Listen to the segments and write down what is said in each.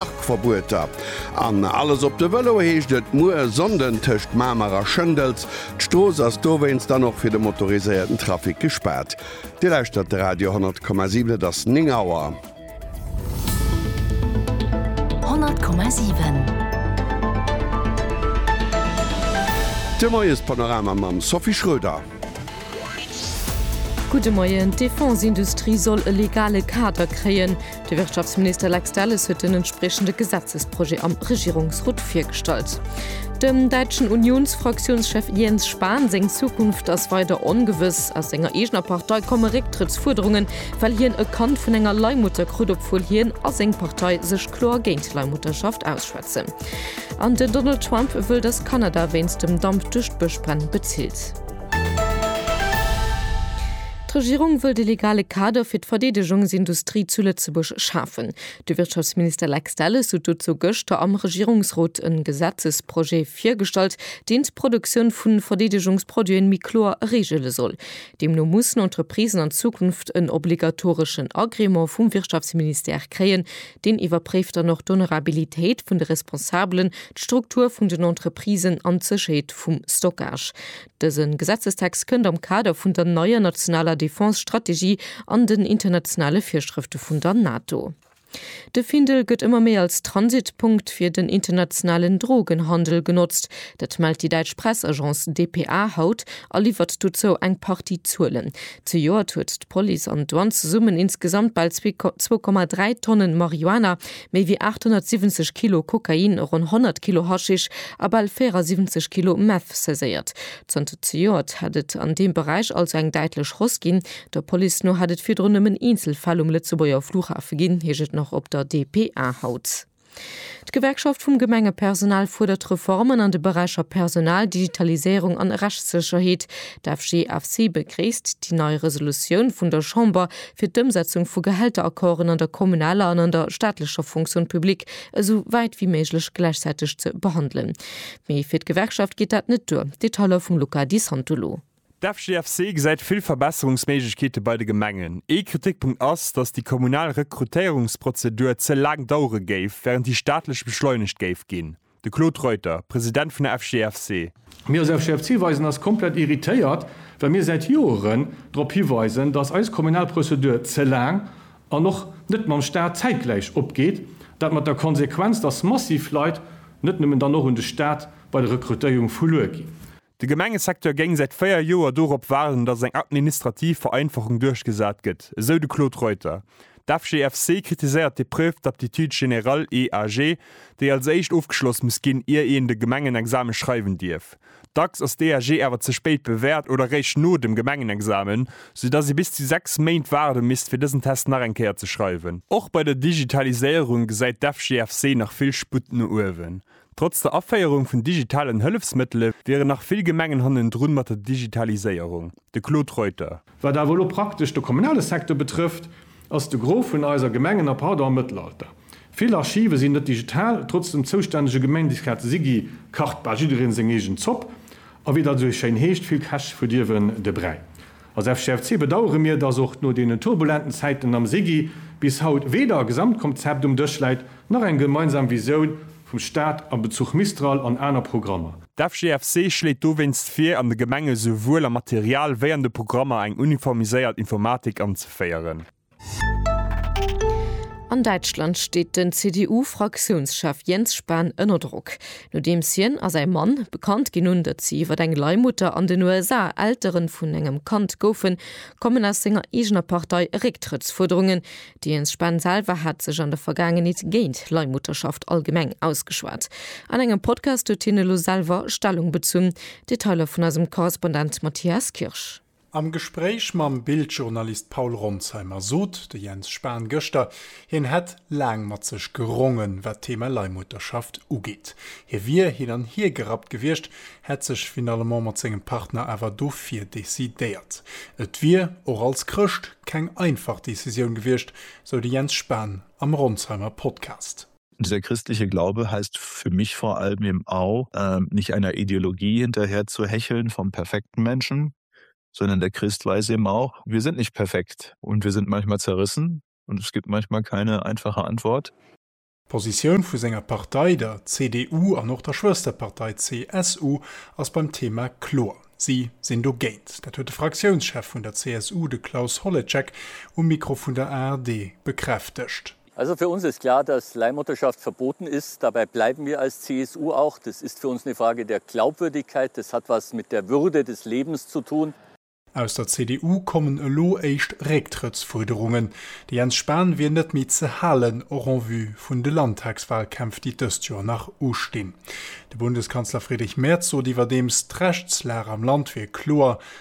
Parkverbueter an alles op de Vëlo heescht et muer Sonnden tëscht Mamer a Schëndels. D'Strooss ass dowéinst dann och fir de motoriséierten Trafic gespaart. Dir lauschtert de Radio 10,7, et ass 9 Auer. 10,7. De Moiespanorama mam Sophie Schröder. Gudde Moien, D'Defense-Industrie soll e legale Kader kréien. De Wirtschaftsminister Lex Delles huet den entspriechende Gesetzesprojet am Regierungsrot virgestallt. Dem däitschen Unions-Fraktiounschef Jens Spahn seng Zukunft ass weider ongewëss. Aus senger eegener Partei komme Récktrëttsfuerderungen, well hien e Kand vun enger Leihmutter krut, obwuel hien a seng Partei sech kloer géint Leihmutterschaft ausschwätzen. Kazen. An den Donald Trump wëll, datt Kanada wéinst dem Damp duerch d'Bëschbränn bezilt. D'Regierung wëllt e legale Kader fir d'Verdeedegungsindustrie zu Lëtzebuerg schafen. De Wirtschaftsminister Lex Delles sot dozou gëschter am Regierungsrot e Gesetzesprojet virgestallt, deen d'Produktioun vu Verdeedegungsproduiten méi kloer regele soll. Deemno mussen Entreprisen an Zukunft en obligatoreschen Agrément vum Wirtschaftsministère kréien, Deen iwwerpréift dann och d'Honorabilitéit vun de Responsabelen, d'Struktur vun den Entreprisen an d'Sécherheet vum Stockage. Dëse Gesetzestext kënnt am Kader vun der neier nationaler Defense-Strategie an den internationale Virschrëfte vun der NATO. De Findel gëtt ëmmer méi als Transitpunkt fir den internationalen Drogenhandel genotzt. Dat mellt déi däitsch Pressagence dpa haut a liwwert dozou eng Partie Zuelen. Zejoert huet d'Police an d'Douane zesummen insgesamt bal zwee zwou Komma dräi Tonne Marihuana, méi wéi 870 Kilo Kokain, ronn 100 Kilo Haschisch a bal 74 Kilo Meth saiséiert. Zanter zejoert hätt et an deem Beräich also eng däitlech Hausse ginn. Der Police no hätt et virdrun nëmmen eenzel Fäll um Lëtzebuerger Flughafe ginn, heescht et nach op der dpa haut. D'Gewerkschaft vum Gemengepersonal fuerdert Reformen an de Beräicher Personal, Digitaliséierung an Rechtssécherheet. D'FGFC begréisst déi nei Resolutioun vun der Chamber fir d'Ëmsetzung vu Gehälteraccorden an der kommunaler an an der staatlecher Fonction publique esou wäit wéi méiglech gläichzäiteg ze behandelen. Mee fir d'Gewerkschaft geet dat net duer. Detailer vum Luca Di Santolo. D'FGFC gesäit vill Verbesserungsméiglechkeete bei de Gemengen. Ee Kritikpunkt ass, datt déi kommunal Rekrutéierungsprozedur ze laang dauere géif, wärend déi staatlech beschleunegt géif ginn. De Claude Reuter, President vun der FGFC. Mir als FGFC weisen eis komplett irritéiert, well mir säit Joeren drop hiweisen, datt eis kommunal Prozedur ze laang an och net mam Staat zäitgläich opgeet. Dat mat der Konsequenz, datt massiv Leit, net nëmmen dann och un de Staat, bei der Rekrutéierung verluer ginn. De Gemengesecteur géing säit 4 Joer dorop waarden, datt eng administrativ Vereinfachung duerchgesat gëtt, esou de Claude Reuter. D'FGFC kritiséiert d'Epreuve d'aptitude générale, EAG, déi als éischt ofgeschloss muss ginn, ier een de Gemengenexame schreiwen dierf. Dacks ass d'EAG awer ze spéit bewäert oder réischt no dem Gemengenexamen, sou datt ee bis zu 6 Méint waarde misst, fir dësen Test nach eng Kéier ze schreiwen. Och bei der Digitaliséierung gesäit d'FGFC nach vill Sputt no uewen. Trotz der Aféierung vun digitalen Hëllefsmëttele wieren nach vill Gemengen hannendrun mat der Digitaliséierung. De Claude Reuter. Wat awer elo praktesch de kommunale Secteur betrëfft, ass de Gros vun eiser Gemengen a pardon am Mëttelalter. Vill Archive sinn net digital, trotz dem zoustännege Gemeindisrat Sigi kacht bal jiddereen seng eegen Zopp a wéi dat esou schéin heescht, vill Käch verdirwen de Bräi. Als FGFC bedauere mir, dass och no deenen turbulenten Zäiten am SIGI bis haut weder e Gesamtkomzept um Dësch läit, nach eng gemeinsam Visioun vum Staat a Bezuch Mistral an aner Programmer. D'FGFC schléit dowéinst vir, an de Gemenge souwuel am Material wéi an de Programmer eng uniformiséiert Informatik anzeféieren. An Däitschland steet den CDU-Fraktiounschef Jens Spahn ënner Drock, nodeems hien a säi Mann bekannt ginn hunn, datt si iwwer eng Leihmutter an den USA Eltere vun engem Kand goufen, kommen aus senger eegener Partei Récktrëttsfuerderungen. De Jens Spahn selwer hat sech an der Vergaangenheet géint Leihmutterschaft allgemeng ausgeschwat. An engem Podcast huet hien elo selwer Stellung bezunn. Detailer vun eisem Korrespondent Matthias Kirsch. Am Gespréich mam Bild-Journalist Paul Ronsheimer sot de Jens Spahn gëschter, hien hätt laang mat sech gerongen, wat d'Thema Leihmutterschaft ugeet. Hie wier hin an hier gerappt gewiescht, hätt sech finalement mat sengem Partner awer dofir decidéiert. Et wier, och als Chrëscht, keng einfach Decisioun gewiescht, sou de Jens Spahn am Ronsheimer Podcast. Dieser christliche Glaube heißt für mich vor allem eben auch, nicht einer Ideologie hinterher zu hecheln vom perfekten Menschen, sondern der Christ weiß eben auch, wir sind nicht perfekt und wir sind manchmal zerrissen und es gibt manchmal keine einfache Antwort. D'Positioun vu senger Partei, der CDU, an och der Schwësterpartei CSU ass beim Thema kloer, si sinn dogéint. Dat huet de Fraktiounschef vun der CSU, de Klaus Holleczek, um Mikro vun der ARD bekräftegt. Also für uns ist klar, dass Leihmutterschaft verboten ist. Dabei bleiben wir als CSU auch. Das ist für uns eine Frage der Glaubwürdigkeit. Das hat etwas mit der Würde des Lebens zu tun. Aus der CDU kommen elo éischt Récktrëttsfuerderungen. De Jens Spahn wier net méi ze halen, och en vue vun de Landtagswahlkämpf, déi dëst Joer nach ustinn. De Bundeskanzler Friedrich Merz sot iwwerdeems, d'Rechtslag am Land wier kloer,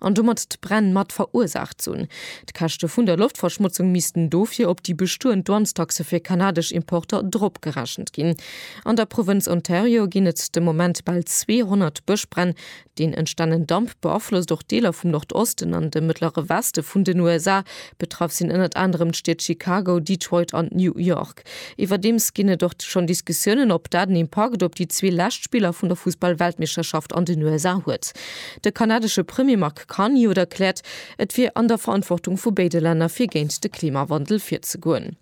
an domat d'Bränn mat verursaacht sunn. D'Käschte vun der Loftverschmotzung missten dofir op déi bestoend Douanestaxe fir kanadesch Importer dropgerechent ginn. An der Provënz Ontario ginn et de Moment bal 200 Bëschbränn. Deen entstanen Damp beaflosst och Deeler vum Nordosten an de mëttlere Weste vun den USA. Betraff sinn ënnert anerem d'Stied Chicago, Detroit an New York. Park. Iwwerdeems ginn et och schonn Diskussiounen, ob dat en Impakt op déi zwee lescht Spiller vun der Fussball-Weltmeeschterschaft an den USA huet. De kanadesche Premier Mark Carney huet erkläert, et wier an der Verantwortung vu béide Länner, fir géint de Klimawandel virzegoen.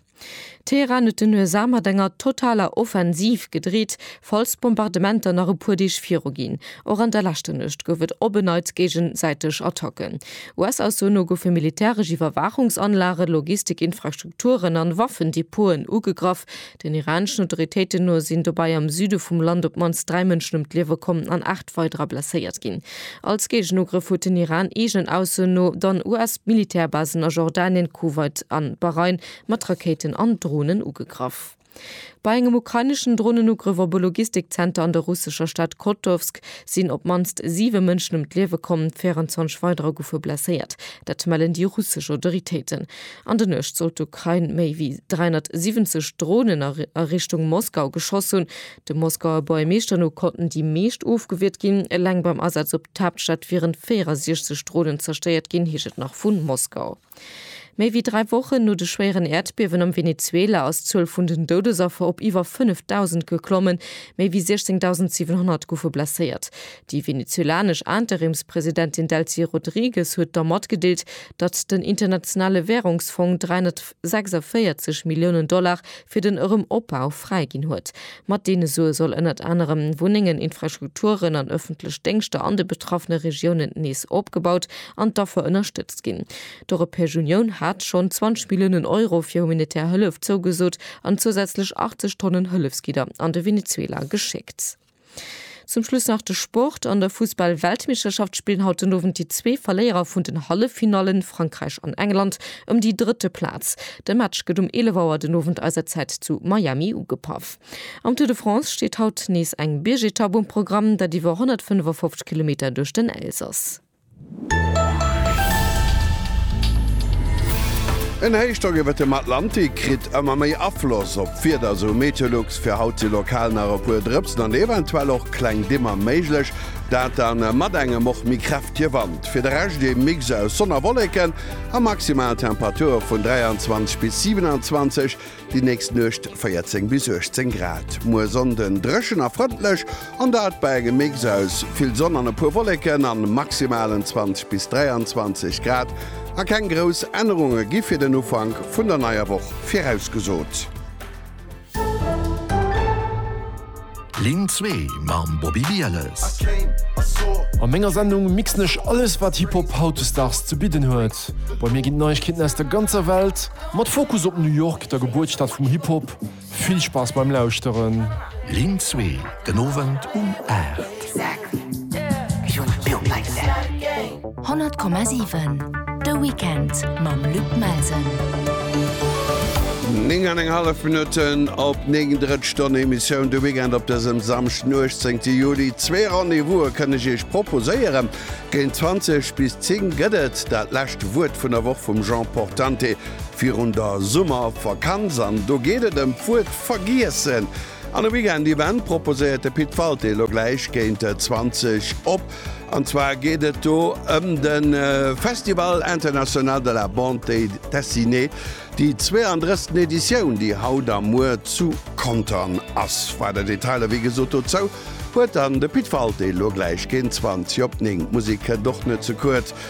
Teheran huet den USA mat enger totaler Offensiv gedreet, Falls d'Bombardementer nach e puer Deeg viruginn, och an der leschter Nuecht, gouf et op en Neits géigesäiteg Attacken. US-Ausso no goufe militäresch Iwwerwaachungsanlage, Logistikinfrastrukturen an Waffendepoten ugegraff. Den iraneschen Autoritéiten no sinn dobäi am Süde vum Land op d'mannst dräi Mënschen ëm d'Liewe komm an aacht weiderer blesséiert ginn. Als Géigenugrëff huet den Iran, eegenen Ausso no, dann US-Militärbasen a Jordanien, Kuwait an Bahrain mat Rakéiten an Dronen ugegraff. Bei engem ukraineschen Dronenugrëff op e Logistikzenter an der russescher Stad Kotowsk sinn op d'mannst siwe Mënschen ëm d'Liewe komm, 24 weiderer goufe blesséiert. Dat mellen déi russesch Autoritéiten. An der Nuecht soll d'Ukrain méi wéi 370 Dronen a Richtung Moskau geschoss hunn. Dem Moskauer Boermeeschter no konnten déi meescht ofgewiert ginn. Eleng beim Asaz op d'Haaptstad wieren 64 Dronen zerstéiert ginn, heescht et nach vu Moskau. Méi wéi dräi Wochen no de schwéieren Äerdbiewen am Venezuela ass d'Zuel vun den Doudesaffer op iwwer 5.000 geklommen. Méi wéi 16.700 goufe blesséiert. Déi venezuelanesch Interimspresidentin Delcy Rodrigues huet da matgedeelt, datt den Internationale Wärungsfong 346 Milliounen Dollar fir den erëm Opbau fräi ginn huet. Mat deene Sue soll ënnert anerem Wunnengen, Infrastrukturen an ëffentlech Déngschter an de betraffene Regiounen nees opgebaut an d'Affer ënnerstëtzt ginn. D'Europäesch Unioun hat schonn 20 Milliounen Euro fir humanitär Hëllef zougesot an zousätzlech 80 Tonnen Hëllefsgidder an de Venezuela geschéckt. Zum Schluss nach de Sport, An der Fussball-Weltmeeschterschaft spillen haut den Owend déi zwee Verléierer vun den Halleffinallen, Frankräich an England, ëm déi drëtte Plaz. De Match gëtt um 11 Auer den Owend eiser Zäit zu Miami ugepaff. Am Tour de France steet haut nees eng Biergetapp um Programm, dat iwwer 155 Kilometer duerch den Elsass. En Héichdrock iwwert dem Atlantik kritt ëmmer méi Afloss op d'Wieder, sou Meteolux. Fir haut si lokal nach e puer Drëpsen an eventuell och kleng Dimmer méiglech, dat da mat engem och méi kräftege Wand. Fir de Rescht ee Mix aus Sonn a Wolleken a maximal Temperature vun 23 bis 27. Déi nächst Nuecht 14 bis 18 Grad. Muer Sonnden dréchen a frëndlech, an dat bei engem Mix aus vill Sonn an e puer Wolleken a maximalen 20 bis 23 Grad. A keng grouss Ännerunge gi fir den Ufank vun der neier Woch virausgesot. Linn zwee mam Bobby Bieles. A menger Sendung mixen ech alles wat Hip-Hop hautdesdaags ze bidden huet. Bei mir ginn d'Neiegkeeten aus der ganzer Welt, mat Fokus op New York, der Gebuertsstad vum Hip-Hop. Vill Spaass beim Lauschteren. Linn zwee den Owend um 8. 100,7 De Weekend mam Luc Melsen. 9 an eng hallef Minutten op 9 drëtt Stonn Emissioun de Weekend op dësem Samschden 18. Juli. Zwee Rendez-vouse kënne ech Iech proposéieren. Géint 20 bis 10 gëtt et dat lescht Wuert vun der Woch vum Jean Portante virun der Summervakanz an do geet et ëm d'Wuert vergiessen. An e Weekend Event proposéiert de Pit Walté elo gläich géint 20 op. An zwar geet et do ëm de Festival International de la Bande Dessinée, déi 32. Editioun, déi haut a muer zu Contern ass. Weider Detailer wéi gesot dozou huet dann de Pit Walté elo gläich géint 20 op 9. D'Musek kënnt och net ze kuerz.